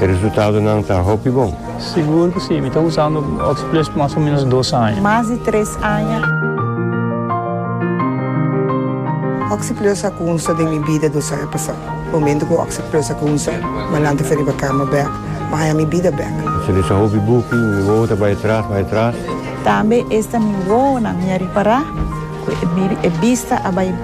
E resultadonan ta hopi bon. Sigur cu si, mi ta usando Oxplus mas o menos dos aña. Mas di tres aña. Oxplus a cunsa den mi bida dos aña pasa. Momento cu Oxplus a cunsa, Malante fo riba cama bek, ma haña mi bida bek. Sin esa hopi buki, mi wowo ta bay atras, bay atras. Tambe esta mi wowonan mi a ripara cu e bista a bay.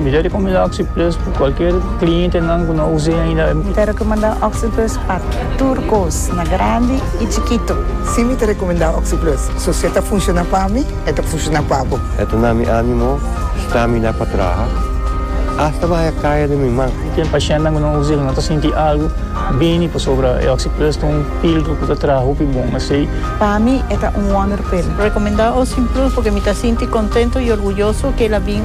Mi ta recomenda Oxyplus pa cualkier clientenan cu no us'e ainda. Mi ta recomenda Oxyplus pa tur cos, na grandi y chikito. Si mi ta recomenda Oxyplus, so si e ta funciona pa mi, e ta funciona pa bo. E ta na mi animo stamina pa traha, hasta baha caya den mi man. Ten pacientenan cu no us'e cu no ta sinti algo bini pasobra e Oxyplus ta un filtro cu ta traha hopi bon asey. Pa mi e ta un wonder pill. Recomenda Oxyplus porque mi ta sinti contento y orguyoso cu el a bin.